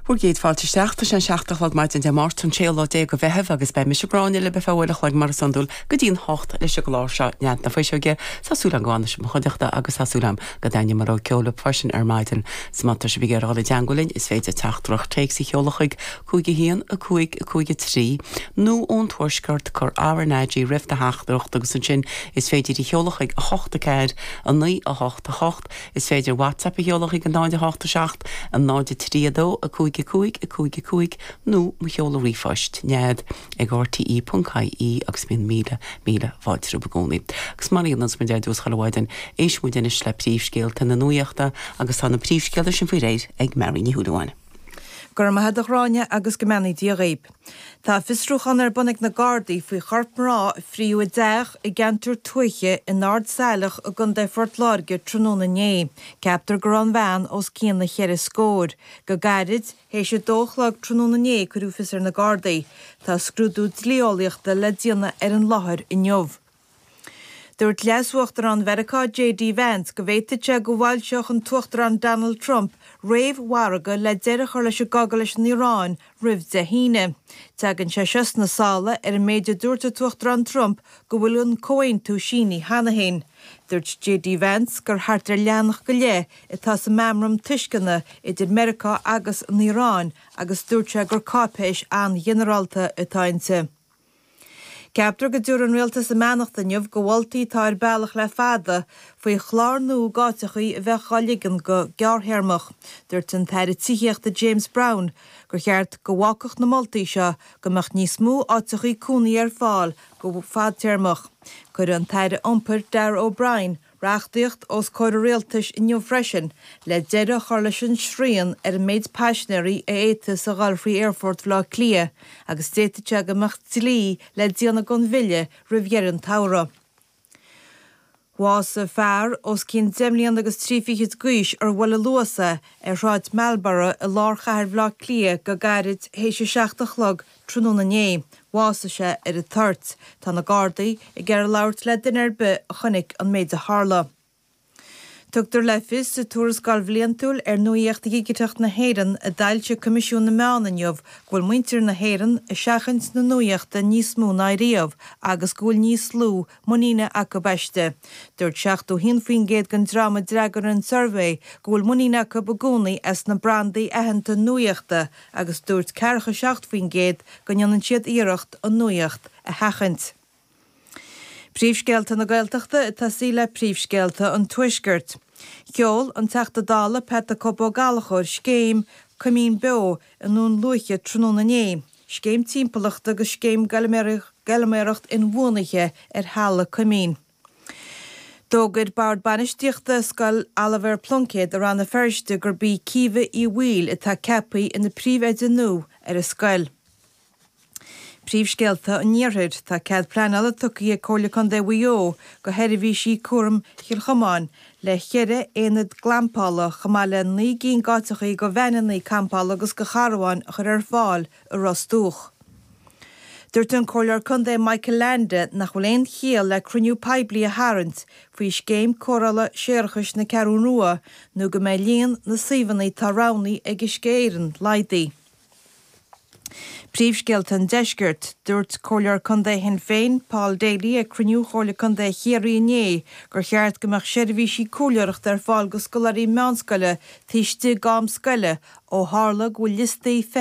Bhur gcéad fáilte isteach. Tá sé an seacht a chlog maidin Dé Máirt, an 16 lá de Mheitheamh, agus beidh mise, Gráinne, libh ar feadh uair a chloig, mar is iondúil, go dtí an hocht leis an gclár seo, Nead na Fuiseoige. Tá súil am go bhfanfaidh sibh i mo chuideachta, agus tá súil am go dtaitneoidh an ceol libh freisin ar maidin. So má tá sibh ag iarraidh dul i dteangmháil linn, is féidir teachtaireacht téics a sheoladh chuig, 51, 5, 5, 3, nó ón Tuaisceart, cur RnaG roimh do theachtaireacht, agus ansin is féidir í a sheoladh chuig, 8, 4, 9, 8, 8. Is féidir WhatsApp a sheoladh chuig 087 03 2 5 5 5 5 nó mo sheoladh ríomhphoist, nead, ag rte.ie agus bíonn míle, míle fáilte romhaibh i gcónaí. Agus mar a dhéanann muid ar dtús chuile mhaidin, éistfidh muid anois le príomhscéalta na nuachta agus tá na príomhscéalta sin faoi réir ag Máirín Ní Shúilleabháin. Go raibh maith agat a Ghráinne agus go mbeannaí Dia dhaoib. Tá fiosrúchán ar bun ag na Gardaí faoi chorp mná a fríodh i dteach i gceantar tuaithe in Ard Saileach i gContae Phort Láirge tráthnóna inné. Ceaptar go raibh an bhean os cionn a cheithre scóir. Go gairid, théis a dó a chlog tráthnóna inné cuireadh fios ar na Gardaí. Tá scrúdú dlí-eolaíochta le déanamh ar an láthair inniu. Dúirt Leas-Uachtarán Mheiriceá JD Vance go bhféadfadh sé go bhfoilseodh an tUachtarán Donald Trump réamh-mhargadh le deireadh a chur leis an gcogadh leis an Iaráin roimh Dé hAoine. Teagann sé seo sna sála ar an méid a dúirt an tUachtarán Trump go bhfuil an comhaontú sínithe cheana féin. Dúirt JD Vance gur thart ar leathanach go leith atá sa meamram tuisceana idir Meiriceá agus an Iaráin agus dúirt sé gur cáipéis an-ghinearálta atá inti. Ceaptar go dtabharfaidh an rialtas a mbeannacht inniu do mholtaí atá ar bealach le fada faoi chlár nua d'áiteachaí a bheadh á ligean go gearrthéarmach. Dúirt an tAire Tithíochta James Browne gur cheart go bhfágfadh na moltaí seo go mbeadh níos mó áiteachaí cónaithe ar fáil go fadtéarmach. Cuirfidh an tAire Iompair Darragh O'Brien reachtaíocht os comhair an rialtais inniu freisin le deireadh a chur leis an srian ar an méid paisinéirí a fhéadfas a ghoil thrí Aerfort Bhaile Átha Cliath agus d'fhéadfadh sé go mbeadh dlí le déanamh den bhille roimh dheireadh an tsamhraidh. Bhásaigh fear, os cionn deich mbliana agus trí fichid d'aois, ar bhuail an Luas é ar Shráid Marlborough i lár chathair Bhaile Átha Cliath go gairid théis a seacht a chlog Tráthnóna inné, bhásaigh sé ar an toirt. Tá na Gardaí ag iarraidh labhairt le duine ar bith a chonaic an méid a tharla. Tugtar le fios sa tuarascáil bhliantúil ar nuaíocht dhigiteach na hÉireann a d'fhoilsigh Coimisiún na Meán inniu go bhfuil muintir na hÉireann ag seachaint na nuaíochta níos mó ná riamh agus go bhfuil níos lú muiníne acu aisti. Dúirt 71% den dream a d'fhreagair an suirbhé go bhfuil muinín acu i gcónaí as na brandaí aitheanta nuaíochta agus dúirt ceathracha seacht faoin gcéad go ndéanann siad iarracht an nuaíocht a sheachaint. Príomhscéalta na Gaeltachta ag tosaí le Príomhscéalta an Tuaiscirt. Sheol an Teachta Dála Pat 'the Cope' Ó Gallchóir scéim Coimín Beo i nDún Lúiche tráthnóna inné, scéim timpeallachta agus scéim feilméarachta inbhuanaithe ar thailte coimín. D'fhógair Bord Bainistíochta Scoil Oilibhéar Pluincéid i Rann na Feirste gurb í Caoimhe Uí Bhaoill atá ceaptha ina príomh-oide nua ar an scoil. Príomhscéalta an Iarthair, Tá cead pleanála tugtha ag Comhairle Contae Mhaigh Eo go Seirbhísí Cúraim Chill Chomáin le ceithre aonad glampála chomh maith le naoi gcinn d'áiteachaí go veaineanna campála agus go carbháin a chur ar fáil i Ros Dumhach. Dúirt an Comhairleoir Contae Michael Leainde nach bhfuil aon chiall le cruinniú poiblí a tharraingt faoi Scéim Cóireála Séarachais na Ceathrún Rua nó go mbeidh líon na suíomhanna atá roghnaí ag Uisce Éireann laghdaí. Príomhscéalta an Deiscirt. Dúirt Comhairleoir Contae Shinn Féin, Paul Daly ag cruinniú Chomhairle Contae Chiarraí inné gur cheart go mbeadh seirbhísí comhairleoireachta ar fáil go scoláirí meánscoile taobh istigh d'am scoile ó tharla go bhfuil liostaí